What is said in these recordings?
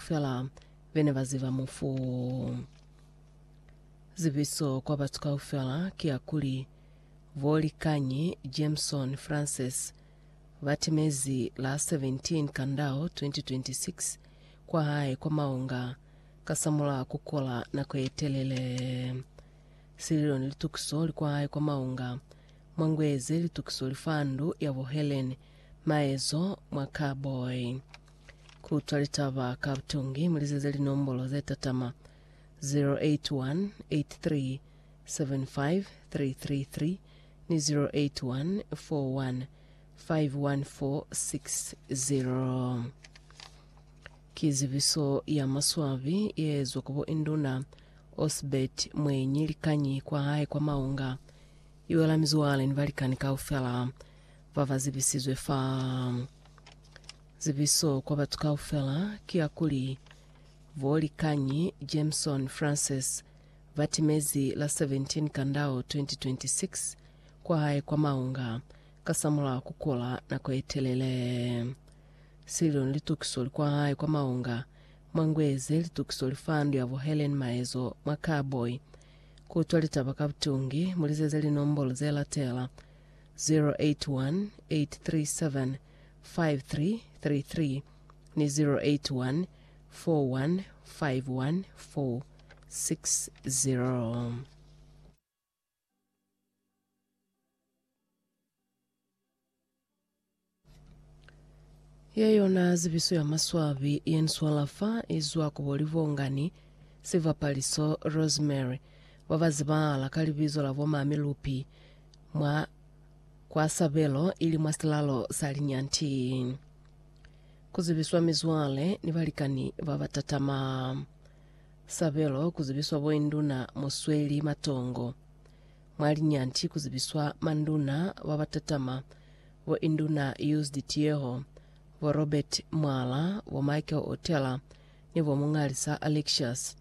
Fela be ne ba ziba mufu. Zibiso kwa batu kaufela ki ya kuli, Bo Likanyi Jameson Frances ba timezi la 17 Kandao 2026 kwa hae kwa Maunga kasamulaho ku kola nako ye telele. Sililo ni litukiso li kwa hae kwa Maunga. Mwa ngwezi litukiso li fa ndu ya bo Helen Maezo mwa Carboy. Kutwa litaba ka butongi mulizeze linombolo zetatama 0818375333 ni 0814151460. Ki zibiso ya maswabi yeezwa ku bo Induna Osbert Mwenyi likañi kwa hae kwa Maunga iwela mizwale ni balikani kaufela baba zibisizwe fa. Zibiso kwa batu kaufela ki ya kuli, Bo Likanyi Jameson Francis ba timezi la 17 Kandao 2026 kwa hae kwa Maunga kasamulaho ku kula nako ye telele. Sililo ni litukiso li kwa hae kwa Maunga mwa ngwezi litukiso li fa ndu ya bo Helen Maezo mwa Karboy. Ku utwa litaba ka butungi, mu lizeze linombolo ze latela, 081 837 5333 ni 081 4151 460. Ye yona zibiso ya maswabi ye ni swala fa i zwa ku bo Livhongani, Sivapaliso, Rosemary, ba ba zibahala ka libizo la bo Mami Lupi, mwa Kwa sabelo ili mwa silalo sa linyanti. Ku zibiswa mizwale ni balikani ba ba tatama. Sabelo ku zibiswa boinduna mu sweli matongo. Mwa linyanti ku zibiswa manduna ba ba tatama, bo Induna Used Tieho, bo Robert Mwala, bo Michael Otela ni bo Mungalisa Alexious.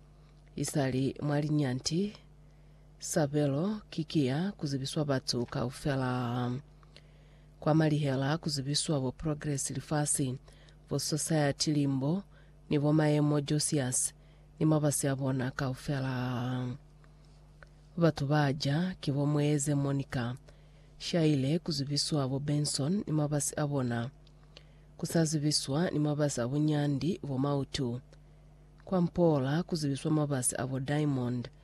Isali mwa linyanti, Sabelo ki kiya kuzibiswa batu kaufela. Kwa malihela kuzibiswa bo progress lifasi, bo society limbo, ni bo mayemo Josias ni mabasi abona kaufela. Batu baja ki bo Mweeze Monica. Shaile kuzibiswa bo Benson ni mabasi abona. Kusazibiswa ni mabasi abunyandi bo Mautu. Kwa Mpoola kuzibiswa mabasi abo Diamond,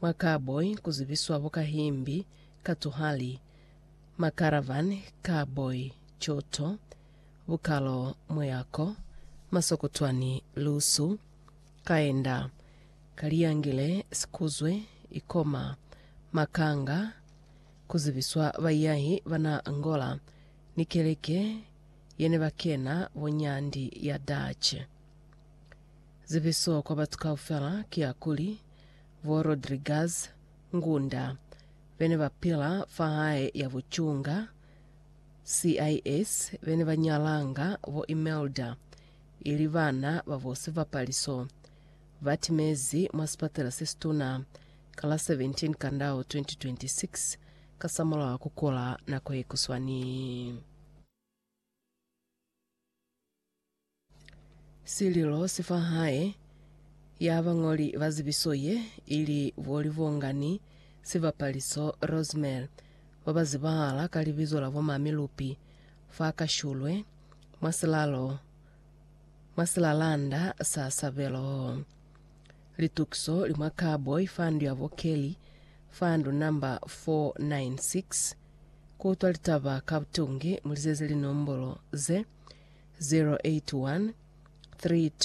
Mwa cowboy ku zibiswa bo ka himbi, ka tuhali, ma caravan, cowboy, coto, bukalo, muyako, masokotwani, lusu, kaenda, kaliyangile, sikuzwe, ikoma, makanga, ku zibiswa baiyahi ba na Angola ni keleke ye ne ba kena bo nyandi ya Dutch. Zibiso kwa batu kaufela ki ya kuli, bo Rodriguez, Ngunda, bene ba pila fa hae ya bucunga, CIS, bene ba nyalanga bo Imelda, ili bana ba bo Sivapaliso, ba timezi mwa sipatela se situna ka la 17 Kandao 2026 kasamulaho wa ku kula nako ye kuswani. Sililo si fa hae ya bañoli ba zibiso ye i li bo Livhongani Sibapaliso Rosemary ba ba zibahala ka libizo la bo Mami Lupi fa Kashulwe mwa silalo mwa silalanda sa Sabelo. Litukiso li mwa Cowboy fa ndu ya bo Kelly fa ndu namba 496. Ku utwa litaba ka butungi, mu lizeze linombolo ze, 081 32